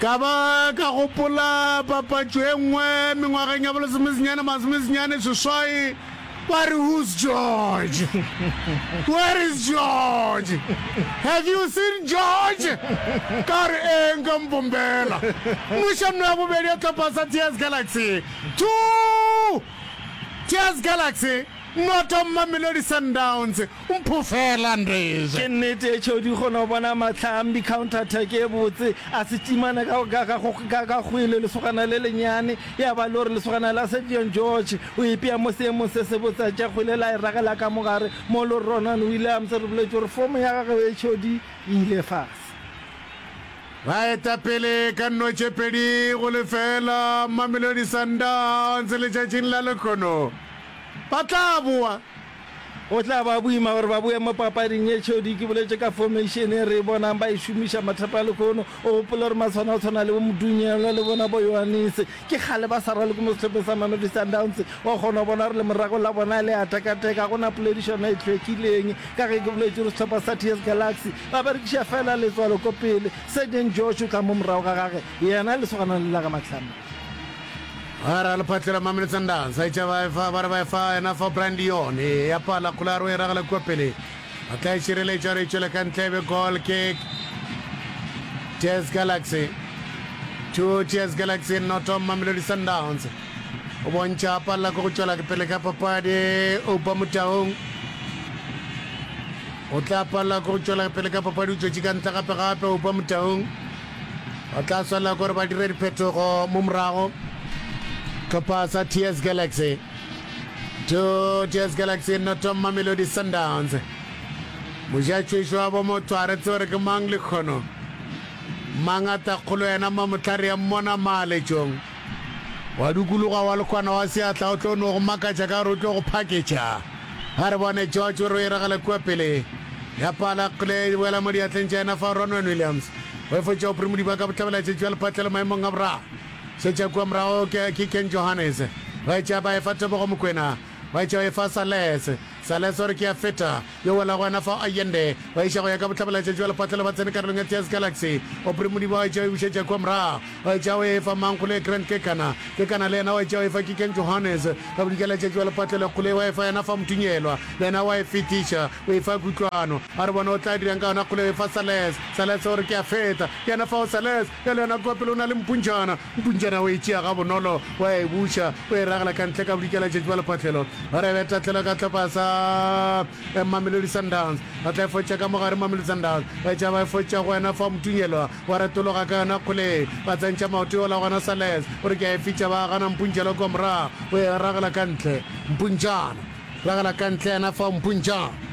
Ka ba ka gopola papatšo e nngwe mengwageng ya bolesomesenyane masomesenyane seswai, ba re, Who's George? Where is George? Have you seen George? Ka re, Ee, nka mpombela. Mmušanno ya bobedi ya tlhopha sa Tears Galaxy, two! Tears Galaxy, noto Mamelodi Sundowns, Mpho fela Ndreze. Ke nnete e tšhodi go no bona Matlham di counter attack e botse a se timana ka ka ka go ka ka kgwele lesogana le lenyane ya ba lore lesogana la Sevion George o ipea mo seemong se se botse a tša kgwele la e ragela ka mogare mo lo Ronan Williams re boletše gore fomo ya gagwe e tšhodi e ile fase. Ba eta pele ka nno tše pedi go lefeela Mamelodi Sundowns letšatšing la lekgono ba tla boa. Go tla ba boima gore ba boe mo papading ye tšhodi. Ke boletše ka formation ye re e bonang ba e šomiša mathata lehono. O gopole gore matshwana go tshwana le bo Modunyelwa le bona bo Yohanese ke kgale ba sa raloke mo sehlopheng sa Mamelodi Sundowns. Wa kgona go bona gore lemorago la bona le a tekateka. Ga go na poledišano e hlwekileng. Ka ge ke boletše gore sehlopha sa TS Galaxy ba berekiša feela letswalo ko pele. Sergeant Josh o tla mo morago ga gage, yena lesogana le la ga Matlhame. Ga ra lephatlela Mamele Sundowns a itša ba efa ba re ba efa yena fa Brian Leon e ya pala kgolaro e ragela kua pele a tla e šireletša gore e tšwele ka ntle be goal kick Tears Galaxy two Tears Galaxy noto Mamelodi Sundowns o bontšha a palela ko go tšwela ke pele ka papadi Oupa Motaung o tla palela ko go tšwela ke pele ka papadi o tšwetše ka ntle gape gape Oupa Motaung ba tla swanela gore ba dire diphetogo mo morago tlhopha sa ts galaxy to ts galaxy noto mamelodi sundowns mojatšwešo wa bomotho a retse gore ke mang lekgono mang a ta kgolo yena mamotlhare ya mmona maaletšong Wa dukuluga wa lekwana wa seatla o tlo no go makatša ka gore o tlo go phaketša. A re bone George o re o iragele kua pele. Ya pala kgle e boela mo diatleng tša yena fa Ronwen Williams o efoetša Aubrey Modiba ka bohlabelaetšetši bja lephatlelo maemong a boraro. Šetša kua morago ke Ken Johannes ba etša ba efa Tebogo Mokwena ba etša ba efa Salese. Salazar ke a feta, yo wela gona fao Allende ba iša go ya ka bohlabelaetša bja lepatlelo ba tsene karolong ya Theas Galaxy. Aubrey Modiba wa etša o e bušetša kua morago, wa etša o e fa Mangkgole Grant Kekana, Kekana le yena wa etša o e fa Kikeng Johannes, ka bodikelaetšatši wa lepatlelo Kgolei wa e fa yena Famutunyelwa, le yena wa e fetiša o e fa Kutlwano. A re bone o tla dirang ka yona Kgolei o e fa Salez, Salez o re ke a feta, ke yena fao Salez, Bjale yona kua pele o na le mpuntšana. Mpuntšana o e tšea gabonolo, o a e buša, o e ragela ka ntle ka bodikela letšatši bja lephahlelo. O re beta tlhelo ka hlopha sa Mamelodi Sundowns. Ba tla e fotša ka mo gare Mamelodi Sundowns, ba etša ba e fotša go wena fa Motunyelwa wa retologa ka yona kgoleng. Ba tsentšha maoto yola gona Salez o re ke a e fetša ba gana Mpuntšelwa kua morago, o e ragela ka ntle. Mpuntšana ragela ka ntle yena fa Mpuntšana.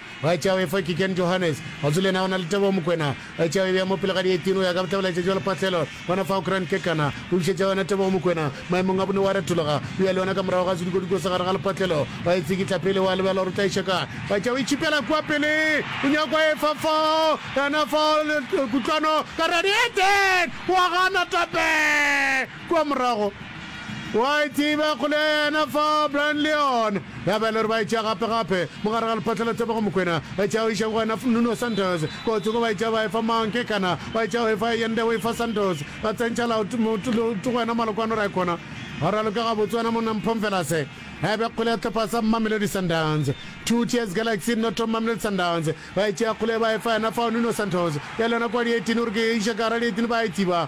Bachawe fa ke Ken Johannes. Ga se le yena o na le Tebogo Mokwena. Bachawe e be ya mo pele ga di 18 o ya ka bohlabela letšatši wa lephahlelo. Gona fao Grand Kekana o bušetša yona Tebogo Mokwena maemong a bone wa retologa o ya le yona ka morago ga sedikodiko sa gare ga lephahlelo. Ba e tsikitla pele wa lebala gore o tla e šeka. Bachawe e tšhipela kua pele o nyaka go efa fao yena fao kutlwano ka radiator wa gana Tape. Kua morago, o a e tseba, kgole ya yena fao, Brian Leon, ya ba e le gore ba e tšea gape, gape, mo gare ga Lephatla la Tebogo, Mokwena, ba e tšea go iša go wena, Nuno Santos, kua o tsoko ba e tšea ba e fa mang, ke kana, ba e tšea go e fa Yende, o e fa Santos, ba tsentšha laut, mot, lout go wena, Malokwano, ra e kgona, go raloka gabotse, wena monna mphong fela se. Ya ba kgole ya sehlopha sa Mamelodi Sundowns, Two Tiers Galaxy, Noto Mamelodi Sundowns, ba e tšea kgole ba e fa yena fao, Nuno Santos, ya le yona kua di-eighteen, o re ke e iša ka gare ga di-eighteen, ba a e tsiba,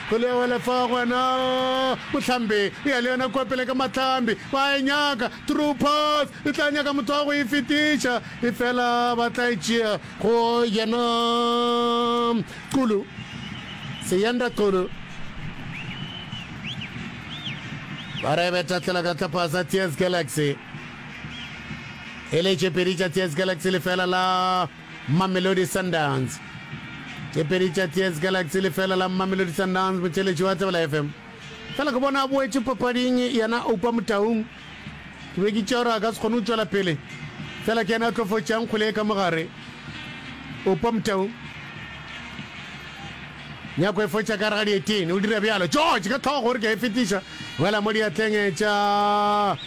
Kgole ya wela fa go wena. Mohlambi o ya le yona kua pele ka mahlambi. Ba e nyaka. True pass. E tla nyaka motho wa go e fetiša. Efela ba tla e tšea go yena. Xulu. Siyanda Xulu. Ba re beta tlela ka tlapasa Tears Galaxy. E le tše pedi tša Tears Galaxy lefela la. Mamelodi Sundowns tše pedi tša TS Galaxy lefela la Mamelodi Sundowns motšheletši wa Tsebela FM fela ke bona a boetše papading yena Oupa Motaung ke be ke tšea gore a ka se kgone go tšwela pele fela ke yena a tlo fotšang kgwele ye ka mogare Oupa Motaung nyako e fotša ka rega dietene o dira bjalo George ka tlhogo gore ke a e fetiša wela mo diatleng tša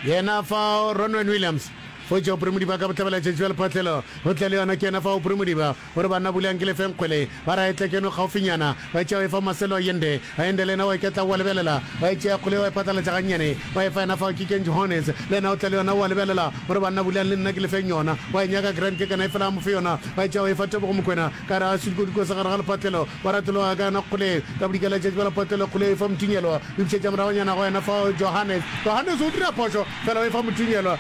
yena fa Ronwen Williams Go tšwa Upremodiba ka bohlabela tšatši la lephotlelo go tla le yona ke yona fa Upremodiba o re banna buleang ke le fe nkgwele ba ra etla keno gaufinyana ba tšea wa efa Marcelo a yende a yende le yena wa iketla wa lebelela wa e tšea kgole ye wa e phatlalatša gannyane wa efa yena fao ke Ken Johannes le yena o tla le yona wa lebelela o re banna buleang le nna ke le feng yona wa e nyaka Grant ke kana e fela a mo fe yona wa e tšea wa efa Tebogo Mokwena ka gare ga sudikodu kose gare ga lephotlelo wa ratologa ka yona kgole ka bodika la tšatši ba lephotlelo kgole o efa Mothunyelwa o ipšhetša moragonyana go yena fao Johannes Johannes o dira phošo fela o efa Mothunyelwa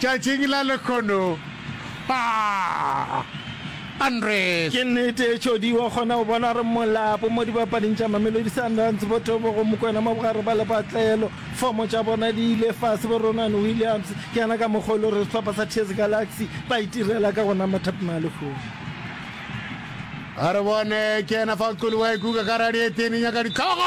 Tšatšing la lekhono aah Andres. Ke nnete e Tšhodi wa kgona go bona gore molapo mo dibapading tša Mamelodi Sundowns bo Tebogo Mokoena mo bogare ba lepatlelo. Fomo tša bona di ile fase bo Ronwen Williams ke yena ka mokgwa o le gore sehlopha sa TS Galaxy ba itirela ka go na Mathap Malehovi. A re bone ke yena fa o qoliwa e kuka ka radieteni nyaka dihlogo.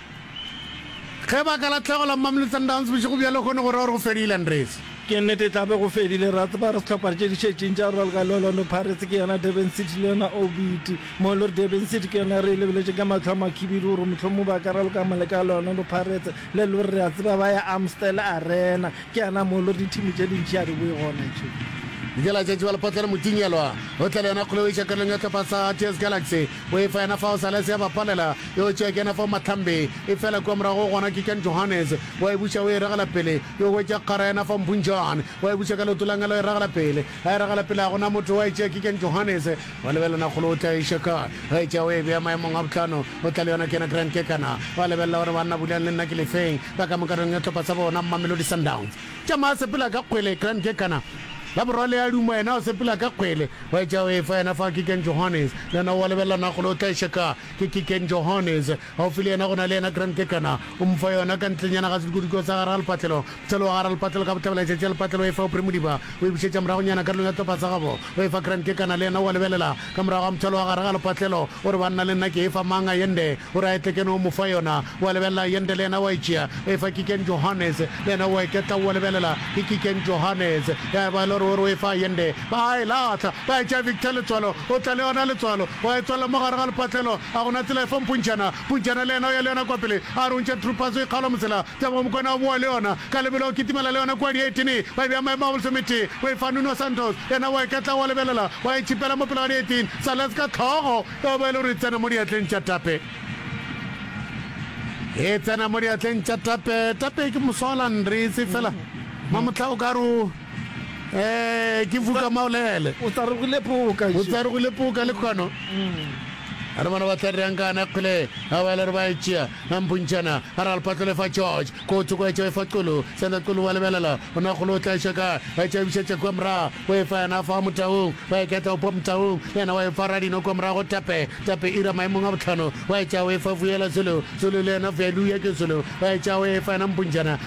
Ge baka la tlhego la Mamelodi Sundowns bošego bja lehono go ra gore go fedile, Andries. Ke nnete e tla be go fedile. Ra tseba gore sehlophana tše di šetšeng tša go rwala ka le Orlando Pirates ke yona Durban City le yona Obiti. Mo e le gore Durban City ke yona e re e lebeletšeng ka mahlo a makhibidu gore mohlomongwe ba ka raloka maleka a le Orlando Pirates le le gore re a tseba ba ya Amstel Arena. Ke yana mo e le gore dithimi tše dintši ga di boe gona tše. Dikela tša Tšibalophotlana Motinyelwa o tla le yona kgoloiša karolong ya sehlopha sa TS Galaxy. O efa yena fao Salese ya ba palela, yo tšea ke yena fao Mahlambe e fela kua morago gona ke Jan Johannes, wa e buša o e regela pele, yo hwetša kgara yena fao Mphung Jan, wa e buša ka leoto la ngela o e regela pele, a e regela pele ga gona motho, wa e tšea ke Jan Johannes, wa lebelana kgolo o tla e iša kae, wa e tšea o e bea maemong a bohlano, o tla le yona ke yena Grant Kekana, wa lebelela gore banna Bulelani le nna ke lefeng, ba ka moka re nyetlhopa sa bona Mamelodi Sundowns. Tšama a sepela ka kgwele Grand ke kana la borwa le a duma yena o sepela ka kgwele wa etša o efa yena fa Kicken Johannes le yena o a lebelela na kgole o tla e šeka ke Kicken Johannes gaufi le yena go na le yena Grand ke kana o mo fa yona ka ntlenyana ga sedikudiko sa gare ga lepatlelo mohlolo wa gare ga lepatlelo ka bohlabela e tšetša lepatlelo o efa Aubrey Modiba o e bušetša moragonyana karolong ya tlhopa sa gabo o efa Grand ke kana le yena o a lebelela Ka morago ga mothalo wa gare ga lepatlelo, o re, Banna, le nna ke efa mang a yende? O re, A etle kene o mo fa yona. O a lebelela, yende le yena o a e tšea, o e fa Kikeng Johannes. Le yena o a iketla, o a lebelela, ke Kikeng Johannes. Ya eba e le gore o re o e fa yende, ba a e lahla, ba etša Victor letswalo, o tla le yona letswalo, o a e tswalela mo gare ga lepatlelo. A go na tsela efa mpontšhana? Pujana le yena o ya le yona kua pele, a re o ntšha Troopers o ikgaola mosela. Tebogo Mokwena o boa le yona ka lebelo, o kitimela le yona kua dietine, ba e bea maemo a bolesometee, o e fa Nuno Santos, yena o a e katla o a lebelela, o a e tšhipela mo pele ga dietin sa Les ka tlhogo, e oba e le gore e tsena mo diatleng tša Tape. E tsena mo diatleng tša Tape. Tape ke moswa wa Landrese fela mamohla o ka re o. Eh, ke fuka maolele. O tsarogile poka. O tsarogile poka le kwano. Re bona ba tla rang kana kgole a ba le re ba etšea a mpuntšana a ra lepatlole fa George ko tsoko etša fa qolo sena qolo wa lebelela ona golo tla etša ka a tša bisa tša kwa mra o efa yana fa motaung ba e ketla opo motaung yana wa efa radino kwa mra go tape tape ira maemong a botlhano wa etša o efa vuela solo solo le yana vuelu ya ke solo wa etša o efa yana mpuntšana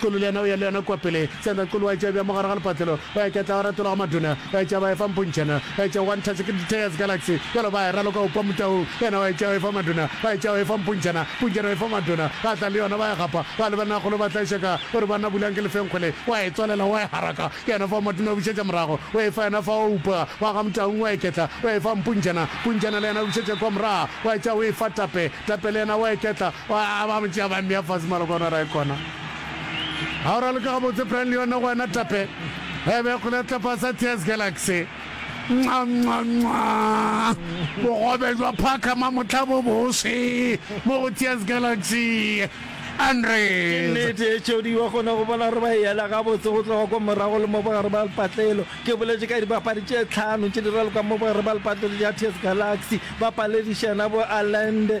Kolo le yena o ya le yona kua pele. Sandra Kolo o a etša bja mogare ga lepatlelo, o ya ketla o ratola go maduna, o etša ba efa mpontšhana, o etša one touch ke Diteas Galaxy, bjalo ba e raloka go kwa mutaung, yena o etša o efa maduna, o etša o efa mpontšhana, mpontšhana o efa maduna, ba tla le yona ba e gapa, ba le bannagolo ba tlaiša ka o re banna bulang ke lefenkgo le, o a e tswalela o a e haraka, ke yona fao maduna o bušetša morago, o efa yona fao o upa wa ga mtaung o a e ketla, o efa mpontšhana, mpontšhana le yena o bušetša kua morago, o etša o efa tape, tape le yena o a e ketla, Ba ba mo tšea ba mmea fase malokwane a rae kona. A o raloka gabotse Brian le yona go wena tape. E be kgole ya tlapa sa Tears Galaxy. Nwa nwa nwa. Bogobe jwa phaka ma motla bo bose mo go Tears Galaxy. Andre. Ke nnete e Jody wa kgona go bona gore ba e yela gabotse go tloga kwa morago le mo bogare ba lepatlelo. Ke boletše ka dibapadi tše tlhano tše di ralokang mo bogare ba lepatlelo tša Tears Galaxy. Ba paledišana bo Allende,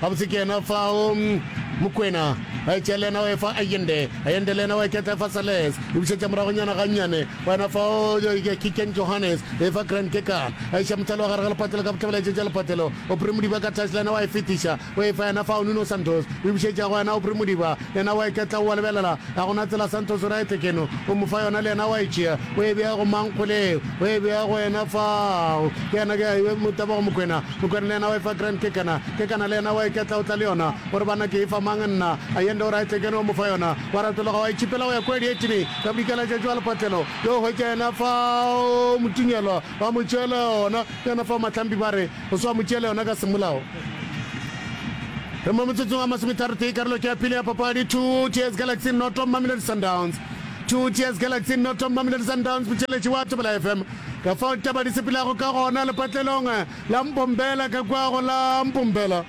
Gabotse ke yena fao, Mokwena. A etša le yena o efa Ayende. Ayende le yena o eketla efa Sales. E bušetša moragonyana gannyane. Go yena fao, Kiken Johannes. E efa Grant Kekana. A iša mohlalo wa gare ga lepatelo ka bohlabela e tšetša lepatelo. Aubrey Modiba ka tlase le yena wa e fetiša. O efa yena fao Nuno Santos. O e bušetša go yena Aubrey Modiba. Yena o a iketla, o a lebelela, ga go na tsela, Santos right keno, o mo fa yona, le yena o a e tšea, o e bea go mang kgole yeo, o e bea go yena fao, ke yena, ke yena, Tebogo Mokwena, Mokwena le yena o e fa Grant Kekana, Kekana le yena o a iketla, o tla le yona, o re, Banna ke e fa mang nna, Ayende o right keno, o mo fa yona, o a ratologa, o a e tšhipela go ya kua dietšene, ka bodika la tšatši wa lepatlelo, yo hwetša yena fao, Motinyelwa, ba mo tšeela yona, ke yena fao Mahlambi ba re, O swa mo tšea le yona ka semolao. Re mo motsotsong a masometharotee, karolo ke ya pele ya papadi. Proteas Galaxy noto, Mamelodi Sundowns. Proteas Galaxy noto, Mamelodi Sundowns, motšweletši wa Thobela FM. Ka fao ditaba di sepelago ka gona lepatlelong la Mbombela ka kwago la Mbombela.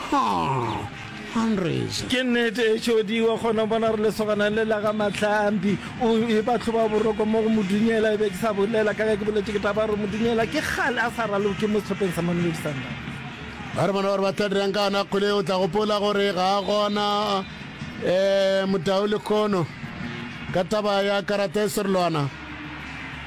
Haa! Hundreds! Ke nnete e tšodiwa gona bona re lesogana le la ga Mahlambi o e ba tlhoba boroko mo go Modunyela e be ke sa bolela ka ke boletše ke taba gore Modunyela ke kgale a sa raloke mo sehlopeng sa Mamelodi Sundowns. Ba re bona gore ba tla dirang ka yona kgwele o tla gopola gore ga a gona eh, Motau Lekhono ka taba ya karata e serolwana.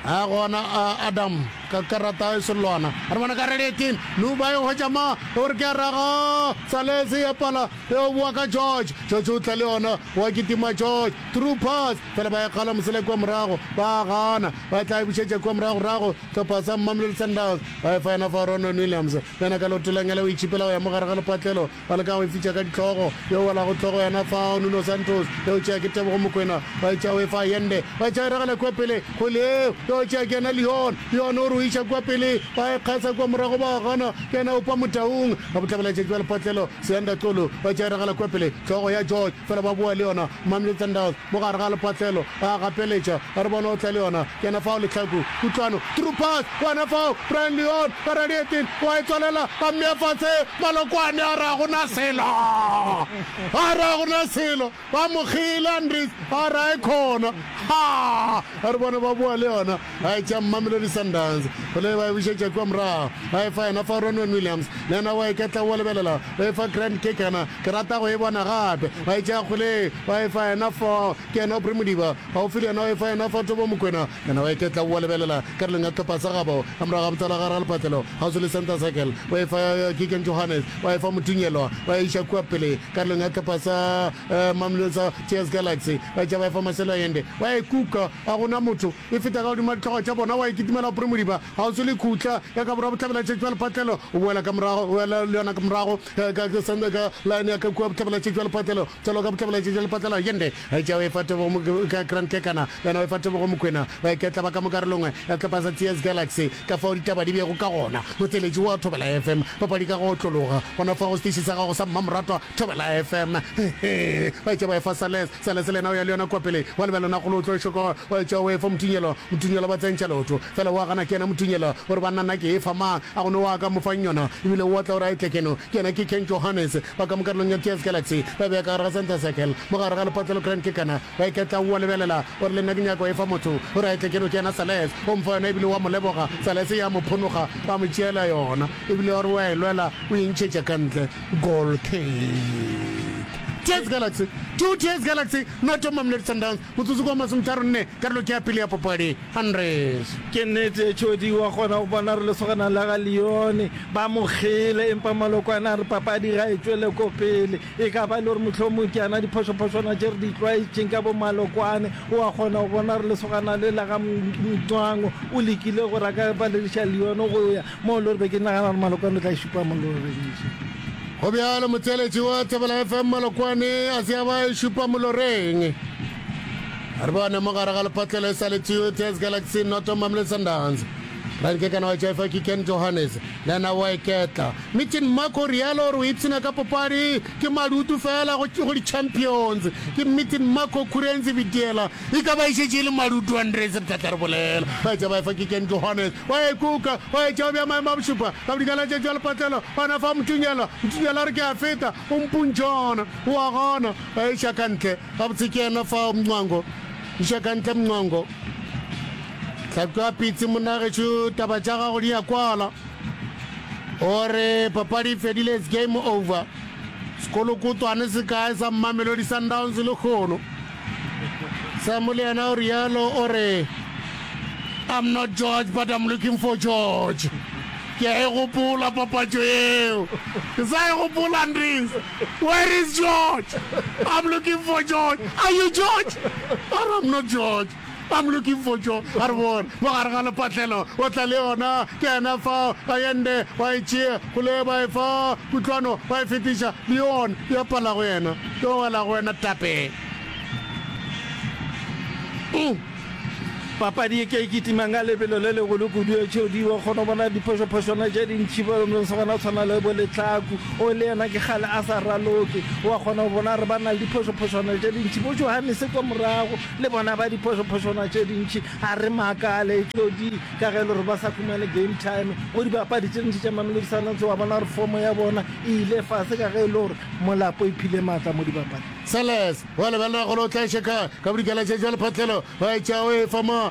a gona a adam ka karata e selwana a re bona ka releting luba e hwetša ma e gore ke a raga salese ya pala e o boa ka george george o tla le yona wa kitima george true pass fela ba e kgala mosele kua morago ba gana ba tla e bušetša kua morago rago tlhopha sa mmamlelo sandals ba e fa yona fa ronon williams yena ka lotelengele o itšhipela go ya mo gare ga lepatlelo Ba leka go e fitša ka dihlogo. Yo o welago hlogo yena fao, Nuno Santos. Eupša ke Tebogo Mokwena. Ba etša o e fa Allende. Ba etša e ragela kua pele go Leo. Yo eupša ke yena Leon. Leon o re o iša kua pele. Ba e kgasa kua morago ba gana. Ke yena Oupa Motaung. A bohlabela tšatši ba lepatlelo. Seanda Xulu. Ba etša e ragela kua pele. Hlogo ya George. Fela ba boa le yona. Mamelodi Sundowns mo gare ga lepatlelo. A gapeletša. A re bona o tla le yona. Ke yena fao Lehlaku. Kutlwano. Through pass. Gona fao, Brian Leon wa Radietin o a e tswalela, a mmea fatshe. Malokwane a re, Ga go na selo! A re, Ga go na selo! Ba mo kgele, Andries a re, A e khona! Ha! A re, Bona, ba boa le yona. A e tšea Mamelodi Sundowns. Gole ba e bušetša kua morago. A e fa yona fao, Ronwen Williams le yena o a e ketla o a lebelela, o e fa Grant Kekana. Ke rata go e bona gape. Ba e tšea Gole ba e fa yena fao, ke yena Aubrey Modiba Gaufi le yena o efa yena fa tobo Mokwena, yena o eketla o a lebelela ka releng ya sehlopha sa gabo. Ka morago ga botala gare ga lepatlelo, gaufi le center circle, o efa ya Gigan Johannes, o a efa Motinyelwa, ba e iša kua pele ka releng ya sehlopha sa Mamelodi sa TS Galaxy, ba etša ba efa Marcelo Allende, wa e kuka, ga go na motho, e feta ka godimo ga ditlogo tša bona, wa e kitimela go Premodiba, gaufi le khutla ya ka borwa bohlabela-tšhetši bja lepatlelo, o boela ka morago, o ela le yona ka morago ka line ya ka kua bohlabela-tšhetši bja lepatlelo. Tšalo ka bohlabolaetše bja lepatlalau ye nde, tšeo efa tebogo mo ka Grant Kekana, wena o efa tebogo Mokwena, ba ke tla ba ka mo karolongwe ya sehlopha sa Tears Galaxy. Ka fao ditaba di bego ka gona, motheeletši wo wa Thobela FM, papadi ka go otlologa gona fa go seteši sa gago sa mmamoratwa Thobela FM. Hehee, ba etša ba efa Sales, Sales le yena o ya le yona kua pele, wa lebela na kgolo o tlo e šoko, wa etša o efa Motunyelo, Motunyelo ba tsentša leoto, fela wa gana ke yena Motunyelo, o re banna na ke efa mang, a go ne wa ka mo fang yona, ebile o otla o re a e tle keno, ke yena ke Ken Johannes. Ba ka mo karolong ya TS Galaxy ba beya ka gare ga center circle mo gare ga lepotla le Grand Kekana ba iketla o a lebelela o re le nna ke nyaka go e fa motho o re a e tle ke no ke yena Sales o mfa yona ebile o a mo leboga Sales ya mo phonoga ba mo tšeela yona ebile o re o a e lwela o e ntšhetša ka ntle goal kick TS Galaxy two TS Galaxy not Mamelodi Sundowns Motsotso ke wa masometharo nne, karolo ke ya pele ya popadi. Andres. Ke nnete, Tšhodi wa kgona go bona gore lesogana la ga Leone ba mo kgele, empa Malokwane a re papadi ga e tšwele ko pele. E ka ba e le gore mohlomong ke yana diphošophošwana tše re di tlwaetšeng ka bo Malokwane. O a kgona go bona gore lesogana le la ga Mncwango o lekile gore a ka palediša Leone go ya, Mo lo re be ke nagana gore Malokwane o tla e šupa mo lo reng eše. Go bjalo motseletši wa Thobela FM Malokwane a se a ba e šupa mo lo reng. A re bone mo gare ga lepatlelo e sa le two Tez Galaxy Noto Mamle Sundowns. Renke kana wa Jefa ke Ken Johannes le ena wa eketla. Meeting Mark o rialo gore o ipshina ka popadi ke madutu fela go go di-champions. Ke Meeting Mark o khurenzi bidiela e ka ba e šetše e le madutu Andres Btlatla re bolela. Ba etša ba efa ke Ken Johannes Wa e kuka, wa e tšewa bja maemo a bošupa, ka bodikela tše tšwa lepatlelo, gona fa Motunyela, Motunyela a re ke a feta, o mpuntšhe gona, o a gona, ba iša ka ntle, gabotse ke yena fao Mncwango, iša ka ntle Mncwango, hlatswa pitsi monna gešo, taba tša gago di a kwala, o re papadi e fedile, it's game over, sekolokotwane se kae sa Mamelodi Sundowns lehono. Samu le yena o rialo o re I'm not George but I'm looking for George ke a e gopola papatšo yeo ke sa e gopola ndis where is George I'm looking for George are you George or I'm not George I'm looking for jo a re bona mo gare ga lepatlelo o tla le yona ke yena fa ba yende ba e tšea go le ba e fa kutlwano ba e fetiša le yona ya pala go yena yo wela go wena tape mm. papadi ye ke e kitimang ka lebelo le legolo kudu ya tšhodi wa kgona bona diphošophošwana tša dintšhi ba lomlong sa gona tshwana le bo letlhaku o le yena ke gale a sa raloke wa kgona go bona re ba na le diphošophošwana tša dintšhi bo johanese kwa morago Le bona ba diphošophošwana tše dintši, ga re makale, todi, ka ge e le gore ba sa humane game time go dibapadi tše dintši tša Mamelodi Sundowns. Wa bona gore fomo ya bona e ile fase ka ge e le gore molapo e phile maatla mo dibapading. Sellers wa lebelela golo o tla šeka ka bodikela tša jwa lephatlelo, ba etša o e fa mo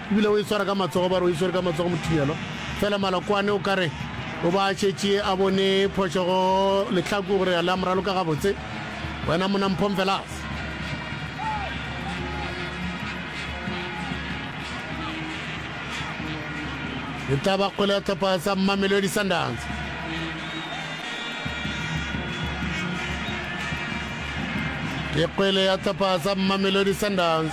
E bile o e swara ka matsogo, ba re o e swere ka matsogo Mothielo. Fela Malokwane o ka re o ba a šetše a bone phošo go Lehlaku gore a le a mo raloka gabotse, Wena monna Mphomfelas! E tla ba kgwele ya tlhopha sa Mamelodi Sundowns. Ke kgwele ya tlhopha sa Mamelodi Sundowns.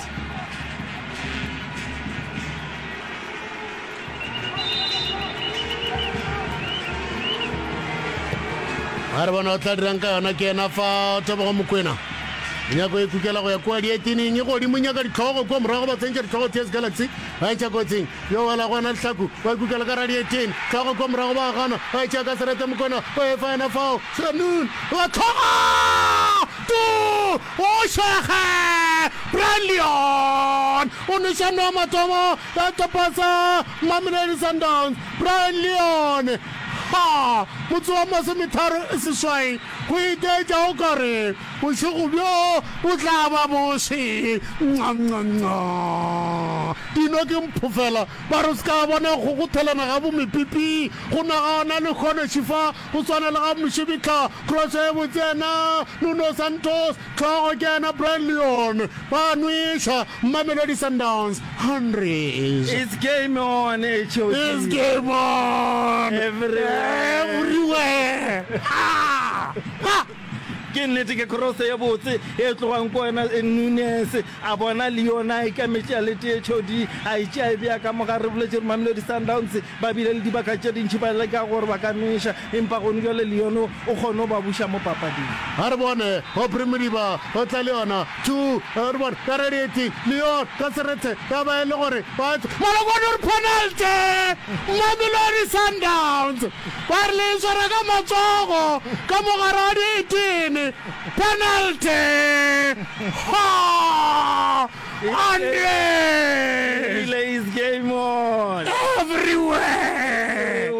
a re bona o tla dirang ka yona ke ena fa tebogo mokwena nyako e kukela go ya kua dietineng e godimo nyaka ditlhogo kua morago ba tsentša ditlhogo ts galaxy ba etša kotsing yo wela go ena lehlaku ba e kukela ka radietene tlhogo kua morago ba gana ba etša ka serete mokwena ba efa ena fao sanon ba tlhoga Bošega! Brian Leon o nweša noa mathomo ya kepa sa Mamelodi Sundowns. Brian Leon, Ha! Motse wa masometharo seswai go itaetša o ka re bošego bjo bo tla ba boše. Nqanqanqa! Dino ke mpho fela. Ba re o se ka bona go kgothelana ga bomepipi go nagana le kgonoši fa Go swana le ga Mošebitla, kroso e botse yena Nuno Santos, hlogo ke yena Brian Leon, ba a nweša, Mamelodi Sundowns, Hunrys. It's game on HOD. It's game on everywhere. Ke nnete ke kroso e botse e tlogang ko wena Nunes, a bona Leon a ikametše a le tee, HOD a e tšea e bea ka mogare, re boletše re Mamelodi Sundowns Ba bile le dibaka tše dintši ba leka gore ba ka nweša, empa gonu bjale Lyon o kgonne go ba buša mo papading. A re bone, Aubrey Modiba o tla le yona, two, a re bone, ka radiate, Lyon ka serethe, ya ba e le gore ba etswa, Malokwane o re penalty, Mamelodi Sundowns ba re le e swara ka matsogo ka mogare wa diitene, penalty, Hoo! Relay's game on. everywhere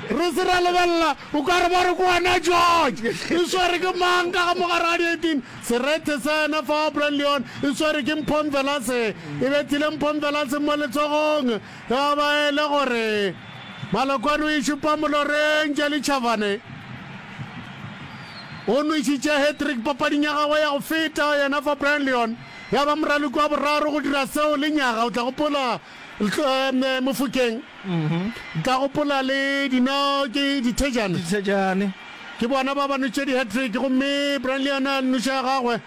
re se ra lebelela o ka re ba re ko wena george e swere ke mang ka ga mogare ga di-18 serethe sa yena fa wa brand leon e swere ke mphomvelase e bethile mphomvelase mo letsogong Taba e le gore Malokwane o išupa moloreng Jelly Chavane o nwešitše hat-trick papading ya gagwe ya go feta yena fa Brian Leon ya ba moraloki wa boraro go dira seo le nyaga o tla gopola eh, Mofokeng mhm. tla gopola le dino ke dithejane ke bona ba ba nwetše di-hat-trick gomme Brian Leon a nnoša gagwe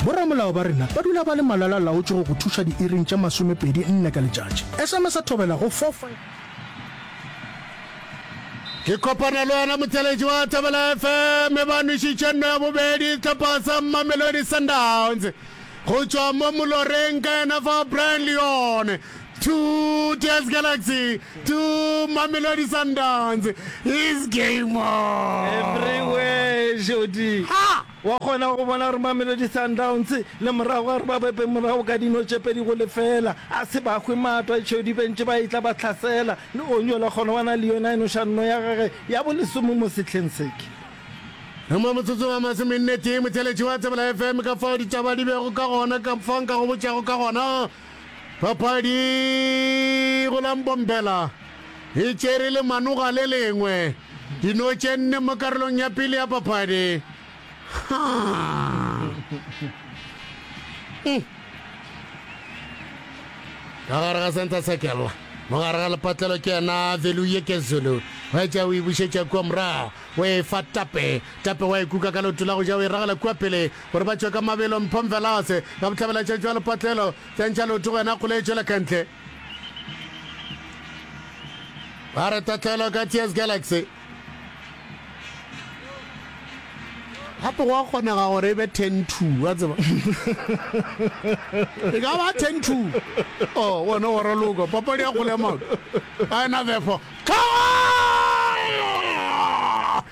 Boramolao ba rena ba dula ba le malala-laotše go go thuša diiring tše masomepedi nne ka letšatši. SMS ya thobela go 45. Ke kopana le wena motšweletši wa Thobela FM e ba nwešitše nno ya bobedi sehlopha sa Mamelodi Sundowns go tšwa mo moloreng ka yena fa Brian Leon two Tears Galaxy two Mamelodi Sundowns is game on. Everywhere, Jody. Ha! Wa kgona go bona gore Mamelodi Sundowns le morago ga gore ba boepe morago ka dino tše pedi go lefeela, a se ba hwe matwa e tšheo dibentše ba etla ba hlasela, le Onyola gona wa na le yona e noša nno ya gage ya bolesome mo sehleng se. Ke. Re mo motsotsong wa masomennetee, motheeletši wa Tsebela FM ka fao ditaba di bego ka gona ka fao nka go botšago ka gona. Papadi go la Mbombela e tšere lemanoga le lengwe dino tše nne mo karolong ya pele ya papadi. Ka gare ga center circle mogare ga lepatlelo ke yena veluye ke zulu wa etša o e bušetša kua morago o e fa tape tape wa e kuka ka leoto la go ja o e ragela kua pele Gore ba tšwe ka mabelo, Mpho Mvelase ka bohlabela tša tšwa lepatlelo, Tšantšha Leoto go yena a kgole e tšwela ka ntle. Ba re tatlhelo ka TS Galaxy. gape go a kgonega gore e be ten two wa tseba e ka ba ten two o oh, one wa raloka papadi ya kgole ya maoto a ena therefore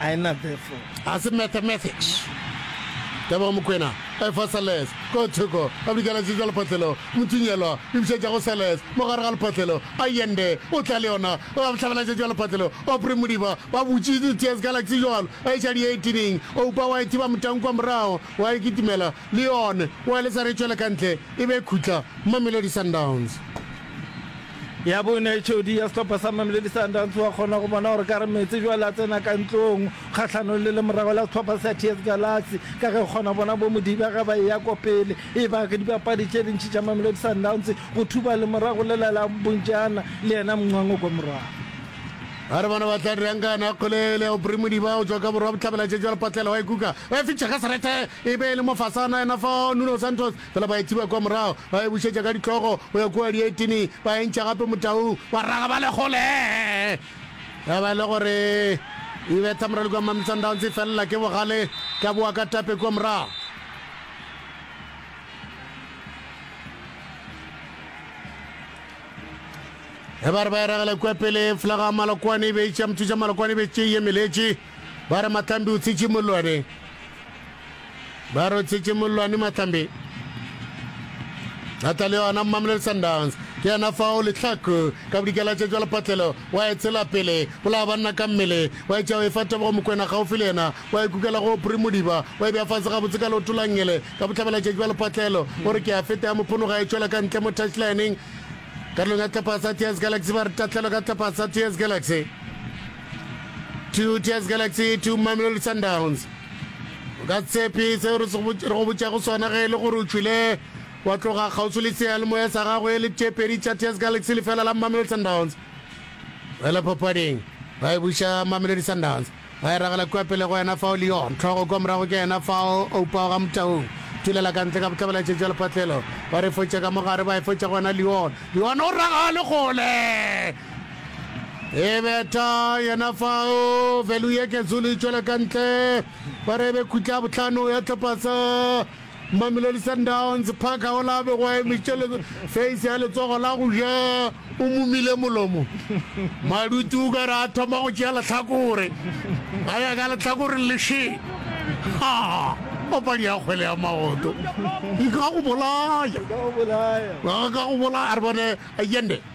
A e na befo. A se mathematics. Tebogo Mokwena, efa Sales ko thoko, a bidikela tšetša lephotlelo, Mothunyelwa, e bušetša go Sales, mo gare ga lephotlelo, a yende, o tla le yona, ba bohlabela tšetša lephotlelo, Opry Modiba, ba butši di tears ka laxi jwalo, a iša di eighteen-ing, Oupa wa e thiba motang kwa morago, wa e kitimela, le yone, wa e lesa re tšwele ka ntle, e be e khutla, Mamelodi Sundowns. Ya bone, Jody ya sehlopha sa Mamelodi Sundowns o a kgona go bona gore ka re Metsi jwale a tsena ka ntlong kgahlanong le lemorago la sehlopha sa TS Galaxy ka ge o kgona go bona bo Modiba ge ba eya kwa pele. E ba ke dibapadi tše dintši tša Mamelodi Sundowns go thuba lemorago lela la Mbunjana le yena Mncwango kwa morago. A re bona ba tla dirang ka yona kgole ele. Aubrey Modiba o tšwa ka borwa bohlabela tšetšo ya lepatlelo wa e kuka, wa e fitšha ka serete e be e le mofasana yena fao. Nuno Santos Fela ba e thiba kwa morago, ba e bušetša ka ditlogo go ya kua dietini, ba e ntšha gape motaung, ba raga ba le kgole. Ya ba e le gore e betha morali kua Mamelodi Sundowns, e felela ke bogale, ka boa ka tape kua morago. Ebare ba e ragela kua pele, flaga Malokwane e be e tšea mothuša Malokwane e be e tšea e emeletše. Ba re Mahlambi o tshitše mollwane. Ba re o tshitše mollwane Mahlambi. A tla le yona Mamelodi Sundowns ke yena fao lehlaku ka bodikela tša jwa lepatlelo wa e tshela pele bolaya banna ka mmele wa etša o e fa tebogo mokwena gaufi le yena wa e kukela go opri modiba wa e bja fase gabotse ka leoto la ngele ka bohlabela tša jwa lepatlelo o re ke a feta ya mophonoga e tšwela ka ntle mo touchlineng karolong ya tlhapha sa ts galaxy ba re tatlhelo ka tlhapha sa ts galaxy Proteas Galaxy to Mamelodi Sundowns. O ka tshepe seo re go botšago sona ge e le gore o tšwile wa tloga kgauswi le seyalemoya sa gago e le tše pedi tša Teas Galaxy lefela la Mamelodi Sundowns. Fela papading ba e buša Mamelodi Sundowns ba e ragela kua pele go yena fao Leon tlhogo kwa morago ke yena fao Oupawa ga motaung tulela ka ntle ka bohlabela tšetša lephatlelo ba re fotša ka mogare ba e fotša go yena Leon Leon o ragale gole E betha yena fao, velu ye ke zulu e tšwela ka ntle. Ba re e be khutla ya bohlano ya tlhopasa Mamelodi Sundowns. Parker o la begwa emetše le face ya letsogo la go ja o mumile molomo. Madutu o ka re a thoma go tšea lehlakore, a ya ka lehlakoreng le še. Ha! Papadi ya kgwele ya maoto e ka go bolaya, e ka go bolaya. A re bone Allende.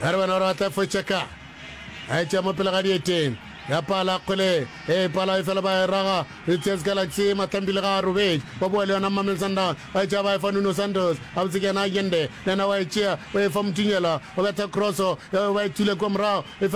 Ba re bona gore ba tla fetša ka a etša mo pele ga dieteng. Ya pala kgwele e pala efela ba e raga Proteas Galaxy. Matlambile ga a robetše ba boa le yona Mamelodi Sundowns ba e tšea ba e fa Nuno Santos gabotse ke yena Allende le yena wa e tšea o e fa Motunyela o betha cross yeo ba e thule kua morago efela